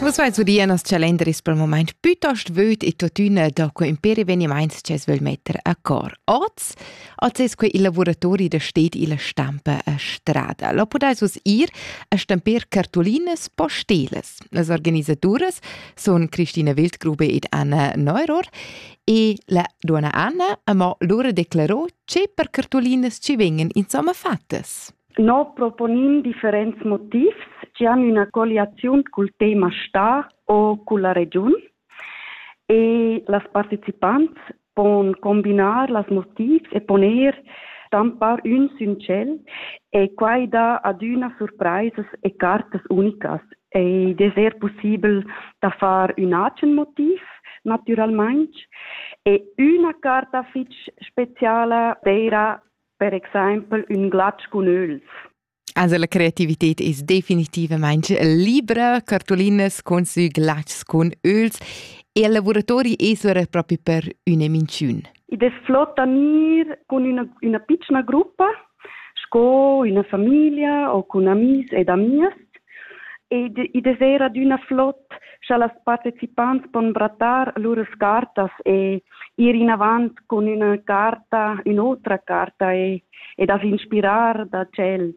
Vus vais udir nos calenderis per moment piuttost vöd e tuttina da quei imperi evenimaints che es völ metter a cor. Oz, oz es quei il lavoratori da stet illa stampa a strada. Lo podais us ir a stampir cartulinas postelas. Las organisaturas sun Christina Wildgrube ed Anna Neuror e la donna Anna amò lura declarò che per cartulinas ci vengan insomma fattas. No proponin differents motivs chi han üna colliaziun cul tema star o culla regiun e las partecipants pon combinar las motivs e pon eir stampar ün sün tschel e quai dà adüna surpraisas e cartas unicas. Id es eir pussibel da far ün agen motiv natüralmaing e üna carta fich speciala d'eira per exempel ün glatsch cun öls. Also la creativität ist definitivamente libera, cartolinas con sü glatschs con öls e i lavoratori esora proprio per üna minciun. Id es flott da gnir cun üna, üna pitschna gruppa, sco üna famiglia o cun amis ed amias, ed id es eir adüna flott, scha las partecipants pon brattar lur scartas e ir inavant cun üna carta, ün'otra carta e, e da s'inspirar da tschels.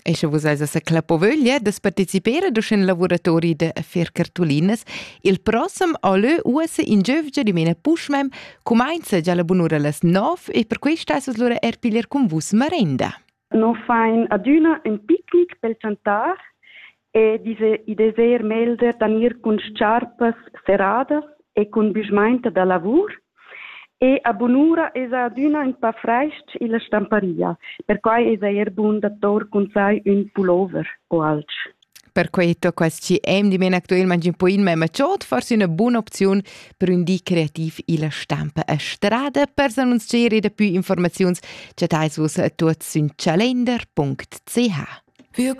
E sche vus eis a sa clapovöglia da participar ad uschen lavuratori da fer cartulinas, il prossem allö uossa in giövgia dimena puschmem cumainza già la bunura las 9 e per questa eis lura er piglier cun vus marenda. non fain adüna ün picnic pel chantar e i deser melder da gnir cun sciarpas seradas e cun büschmainta da lavur e a bunura esa adüna ün pa fraich-ch illa stamparia, perquai esa eir bun da tour cun sai ün pullover o alch. Perquei tocca schi eim di men actualmente un po in mema chod, forse una buona opzione per un di creativ illa stampa a strada. Per s'annunzier e da più informaziuns chattais vus a tuot sün calender.ch. Wir